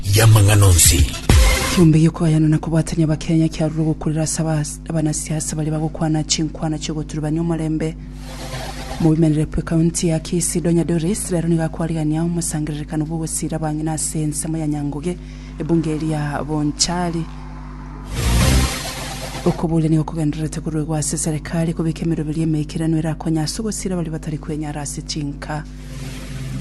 y'amang'ana onsi. Kiombe giokoyana na kobwatania Abakenya kiarure gokurera ase abanasiasa baria bagokwana chinkwana chiogoturubania omorembe. Mobimerire bwe county ya Kisii Donya Doris rero nigo akwarigania omosangererekano bw'ogosiira abang'ina ase ensemo ya Nyanguge ebunge eria ya Bonchari. Okoboria nigo kogendererete koruegwa ase serekari kobeka emeroberio emeikiranu erakonye ase ogosiira baria batari kwenyara ase chinka.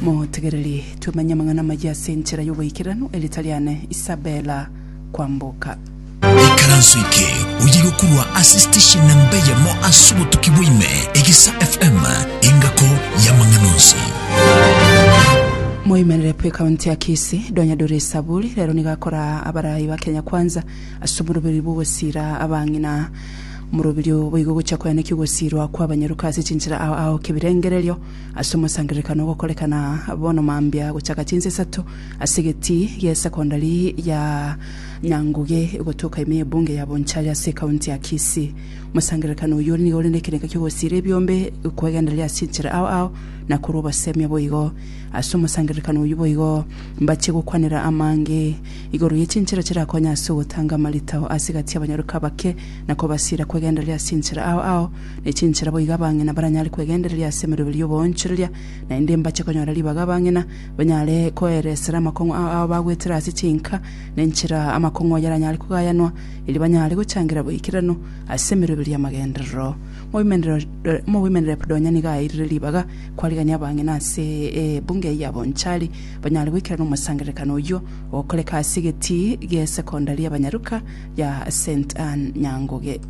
Motegereri twemenye amang'ana amayia ase enchera y'oboikeranu, erieta riane Isabella Kwamboka. Ikaranso eke oyiga korwa ase steshen namba eyemo ase obotuki bwa ime, Egesa FM, engako y'amang'ana onsi. Moimerere pu ekaunti ya Kisii, Donya Dore Esaburi rero nigo akora abarai ba Kenya Kwanza ase omoroberi bw'ogosira abang'ina. Omoroberi oyo boigo ogocha koyaneki ogosirwa kw'abanyaruka ase chinchera ao ao kebirengererio. Ase omosangererekano ogokorekana bono mambia gochaka chinsa isato ase egetii gi'esecondary ya Nyanguge gotoka ime y'ebunge ya Bonchari ase ekaunti ya Kisii. Omosangererekano oyio nigo ore nekerengo ki'ogosiira ebiombe, kwegenderera ase enchera ao ao, na korwa obosemia boigo. Ase omosangererekano oyio boigo mbache gokwanera amange igoro ye chinchera chirakonye ase ogotanga amaritao ase egati y'abanyaroka abake na kobasiira kwegenderera ase enchera ao ao, ne chinchera boigo abang'ina baranyare kwegendereria ase emeroberio y'oboonchoreria, naende mbache konyora ribaga abang'ina banyare koeresera amakong'u ao ao bagwetire ase chinka, na enchera amakong'u ayio aranyare kogayanwa, erio banyare gochangira boikeranu ase emeroberio y'amagenderero. Omogweimenerep donya nigo aeirire ribaga kwarigania abang'ina ase ebunge eyio abonchari banyare goikerana omosangererekano oyio ogokoreka ase egetii gesekondari y'Abanyaruka ya Saint Anne Nyanguge.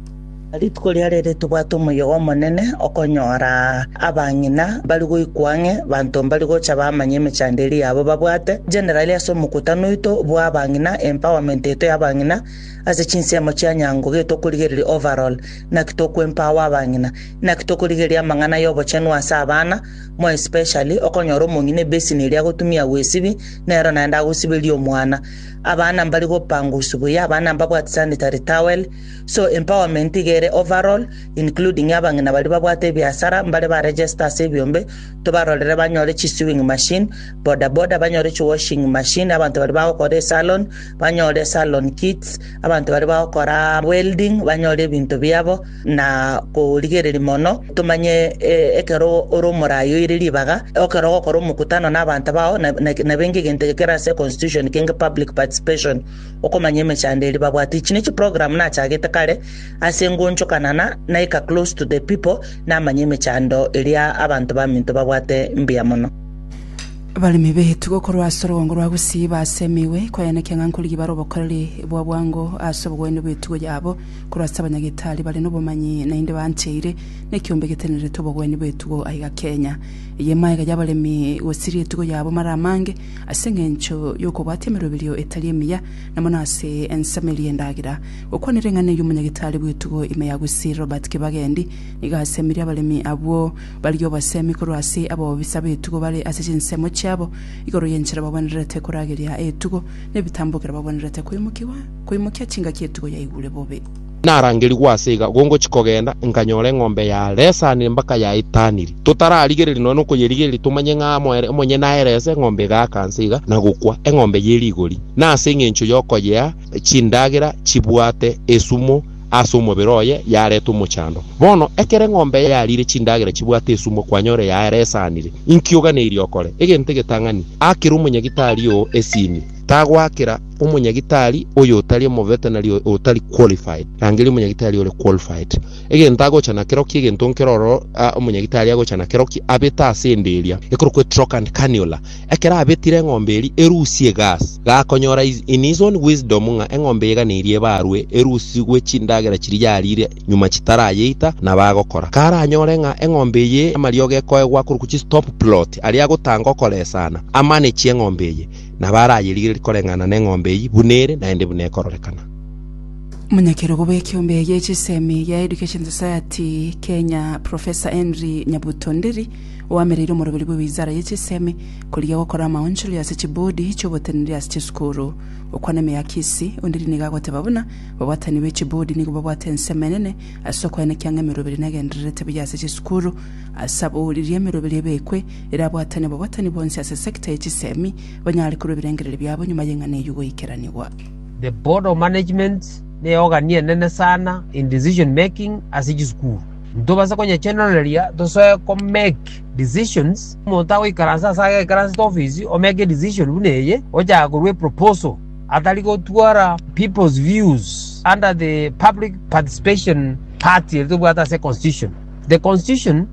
Rituko riria riria tobwate omoyega omonene okonyora abang'ina bari goikwa ang'e, banto mbari gocha bamanye emechando eria yabo babwate, generally ase omokutano oito bw'abang'ina, empowerment yaito y'abang'ina ase chinsemo chia nyango, gaki tokorigereria overall, naki toko empower abang'ina, naki tokorigereria amang'ana y'obochenu ase abana, more especially okonyora omong'ina ebassin eria agotumia agoesibi, nero naende agosiberia omwana. Abana mbari gopangwa usu buya, abana mbabwate sanitary towel, So empowerment iga ere overall, including abang'ina baria babwate ebiasara, mbare ba register ase ebiombe, tobarorere banyore chi sewing machine, boda boda banyore chi washing machine, abanto baria bagokora esalon banyore salon kits, abanto baria bagokora welding banyore ebinto biabo, na korigereria mono tomanye eh, ekero ore omorayi oire ribaga, ekero ogokora omokutano na abanto bao, na- na- nabenge egento eke kere ase constitution kenge public participation. okomanya emechando eria babwate ichi ne chi program nachagete kare ase ngoonchokana na naika close to the people namanye emechando eria abanto baminto babwate mbuya mono. Abaremi beetugo korwa ase orogongo rwa Gusii baase emegwe koyanekia ng'a nkorigia bare obokoreri bwa bwango ase obogwene bw'etugo yabo korwa ase abanyagitari bare nobomanyi naende baancheire nekiombe getenerete obogwene bw'etugo aiga Kenya. Eye emaaega y'abaremi gosiria etugo yabo mara amange Ase engencho y'okobwatia emeroberio etari emiya, na mono ase ensemo eria endagera, gokwana ring'ana y'omonyagitari bw'etugo ime ya Gusii Robert Kibagendi nigo asemirie abaremi abwo baria obosemi korwa ase abaobisa b'etugo bare ase chinsemo chiabo igoro y'enchera babwenererete korageria etugo n'ebitambokero babwenerete koimokia chingaki etugo yaigure bobe. Narangerigwe ase iga, gongochia kogenda, nkanyora eng'ombe ya Lesa nembaka ya Itaniri. Totararigereria nonya nokoyerigereria tomanye ng'a amo ere, omonyene aerese, eng'ombe egaaka nse iga, na gokwa, eng'ombe ye rigori. Na ase engencho y'okoyea chindagera chibwate esumo ase omobere oye, yareta omochando. Bono, ekero eng'ombe yariire chindagera chibwate esumo, kwanyora eyaye Lesa anire. Inki oganeirie okore? Egento egetang'ani, akera omonyagitari oo esini. Tagoakera. omonyagitari oyotari omoveterinary otari qualified, rangeria omonyagitari ore qualified. Egento agocha nakero ki egento nkero oro ah, omonyagitari agocha nakero ki abete ase ende eria ekorokwa etrock and cannula. Ekero abetire eng'ombe eri erusie egas, gakonyora is- in his own wisdom ng'a eng'ombe eye gana eria ebarwe erusigwe chindagera chiria yarire nyuma chitarayeita nabo agokora. Karanyore ng'a eng'ombe eye amariogo ekoegwa akorokwa chistop plot aria agotanga okoresana, amanage eng'ombe eye. Nabo arayerigererie koreng'ana neng'ombe eyio buna ere, naende buna ekororekana. Omonyakerogo bw'ekeombe eye chisemi gia Education Society Kenya Professor Henry Nyabuto Nderi oamereire omoroberi bwe wizara ye chisemi korigia gokora amaonchoria ase chibodi chi'oboteneneri ase chisukuru. Okwana emeakisi, Onderi nigo agoteba buna babwatani be chibodi nigo babwate ensemo enene ase okoenekia ng'a emeroberi negendererete buya ase chisukuru ase abwo riria emeroberi ebekwe erabwatane bobwatani bwonsi ase sector ye chisemi, banyare korua ebirengererio biabo nyuma y'eng'ana eyio goikeranigwa. The Board of Management neogani enene sana in decision making ase chisukuru. Ntobase konyechendoreria tosoe ko make decisions, omonto agoikaransa ase agekaransete ofisi o make decision buna eye, ochaka korua eproposal atari gotwara people's views under the public participation part eri tobwate ase constitution. The constitution.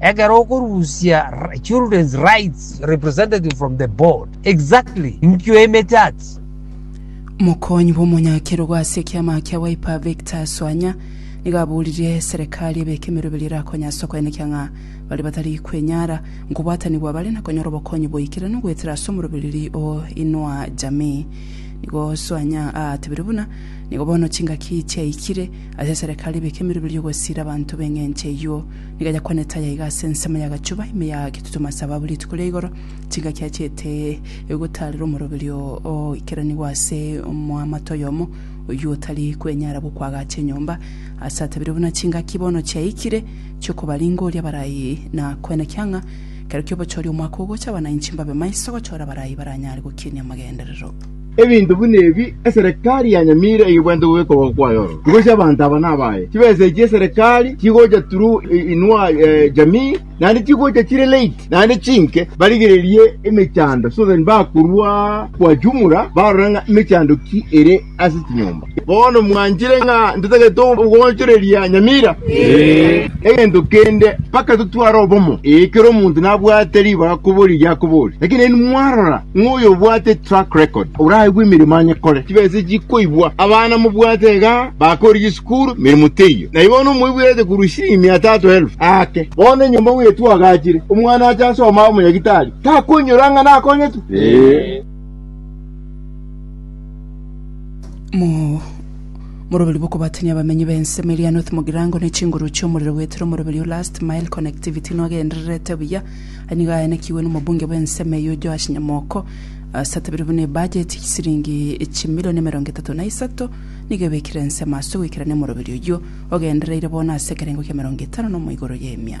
Ekero okorusia children's rights representative from the board, exactly inkio emechati? Omokonyi bw'omonyakerogo ase ekiama kia Wiper Victor Swanya nigo aboririe serekari ebeke emeroberio erakonywe ase okoenekia ng'a baria batari kwenyara nkobwatanigwa bare na konyora obokonyi boikire na goetera ase omorobereiri o Inua Jamii. Nigo Swanya aatebire buna nigo bono chingaki chiaikire ase serekari ebeke emeroberio gosiira abanto b'eng'encho eyio. Nigo yakwanete aya iga ase ensemo y'agachuba ime ya getutuma sababu rituko ria igoro chingaki achiete gotaarera omoroberio ogoikeranigwa ase omoamate oyomo oyio otari kwenyara gokwagacha enyomba, ase atabire buna chingaki bono chiaikire chiokobaringoria abarai na koenekia ng'a kero ki'obochori omwaka ogocha abana inche mbabe maiso gochora abarai baranyare gokinia amagenderero. Ebinto buna ebi eserekari ya Nyamira eyebwate gwekorwa kwayo ororo, igo chi'abanto aba nabaye. Chibesa echi eserekari chigocha turu inua jamii naende chigocha chire late naende chinke barigererie emechando so that bakorwa kwa jumla barora ng'a emechando ki ere ase chinyomba. Bono mwanchire ng'a ntatagete ogoonchoreria nyamira? Egento kende, mpaka totware obomo. Ee, kera omonto nabwate ribaga koboria erio akoboria. Lakini nainwe mwarora ng'a oyobwate track record oraigwe emeremo anyekore, chibesa echi chikoibwa. Abana mobwate iga bakoorire chisukuru, emeremo teiyo. Na bono omoiborete korwa chisiringi mia tatu elfu aake. Bono enyomba bwetu agachire, omwana ache asome abe omonyagitari, takonyora ng'a nakonyetwe? Mo- moroberi bw'okobatania abamenyi b'ensemo eria North Mugirango na echinguru chi'omorero goetera omoroberi o Last Mile Connectivity nwagendererete buya. Aya nigo ayanekigwe n'omobunge bw'ensemo eyio Joash Nyamoko ase atabeire buna ebudget siringi chimilion emerongo etato na isato nigo ebekire ensemo ase ogoikerania omoroberi oyio ogendereire bono ase ekerengo kia emerongo etano na omoigoro y'emia.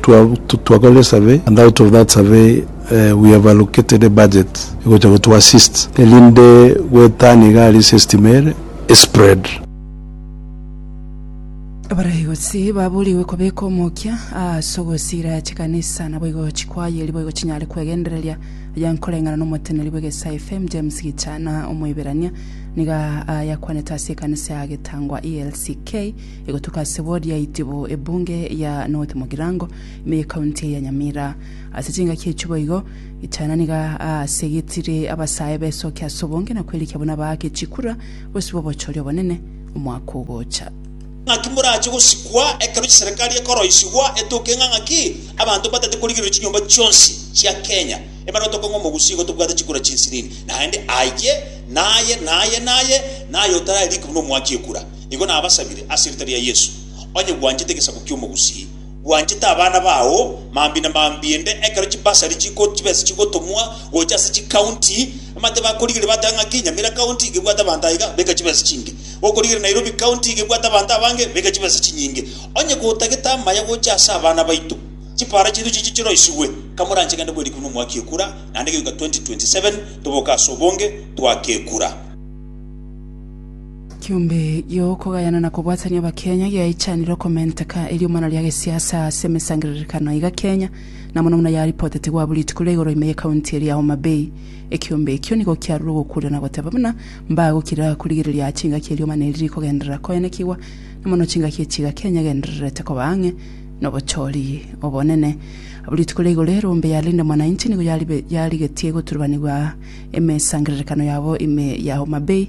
Twakore esurvey and out of that survey we have allocated a budget egocha go to assist erinde goetania iga aria ase estima ere e spread. Abaraigosi baburigwe kobeka omokia aase ogosira chikanisa naboigo chikwayeri boigo chinyare kwegendereria aya nkoreng'ana nomoteneri bw'egesae FM James Gichana omoiberania niga ayakwanete ase ekanisa ya Getangwa ELCK Egotuka ase ward ya Itibu, ebunge ya North Mugirango, ime ye county ya Nyamira. Ase chingaki echio boigo, Gitana niga aasegetire abasae besoke ase obonge na kwerikia buna baake chikura bosibwa obochori obonene omwaka ogocha. Ng'aki morache gosikwa ekero chiserekari ekoroisigwa etoke ng'a ng'aki abanto mbatete korigereria chinyomba chionsi chia Kenya ebare otoke ng'a omogusii igo tobwate chikura chinsinini naende aye naye naye naye naye otarareriki buna omwaki ekura Igo nabasabire ase erieta ria Yeso, onye gwanchete egesaku ki'omogusii, gwanchete abana bao mambia na mambia inde ekero chibasari chiko chibesa chigotomwa gocha ase chikaunti, amate bakorigereria bateba ng'aki Nyamira County iga ebwate abanto aiga, beka chibesa chinge. Okorigereria Nairobi County iga ebwate abanto abange, beka chibesa chinyinge. Onye gotagete amaya gocha ase abana baito, chipara chiaito chiche chiroisigwe. Kamoranche gende bwerikire buna omwaka ekura, naende gegoika 2027 toboke ase obonge, twake ekura. Kiombe gi'okogayana na kobwatania Abakenya giaichanire okomenteka eriomana ria gesiasa ase emesangererekano aiga Kenya, na mono mono yaripotetigwe abwo rituko ria igoro ime ye county eria Homa Bay. Ekiombe ekio nigo kiarure ogokuria na goteba buna mbagokira korigereria ase chingaki eriomana eri rikogenderera koenekigwa, na mono chingaki echiiga Kenya egendererete koba ang'e nobochori obonene. Abwo rituko ria igoro erombe ya Linda Mwananchi nigo yarigetie goturubanigwa emesangererekano yabo ime ya Homa Bay,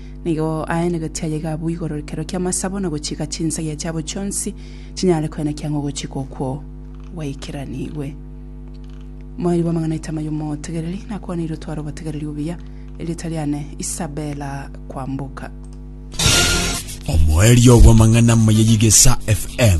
Nigo aenegete aye gabwo igoro rikero ki'amasabo na gochika chinsagia chiabo chionsi chinyare koenekia ng'a ogochika okwo gwaikeranigwe. Moeri bw'amang'ana Itama y'omotegereri nakwaneirwe tware obotegereri obuya. Erieta riane Isabella Kwamboka. Omoerio bw'amang'ana Mayeyigesa FM.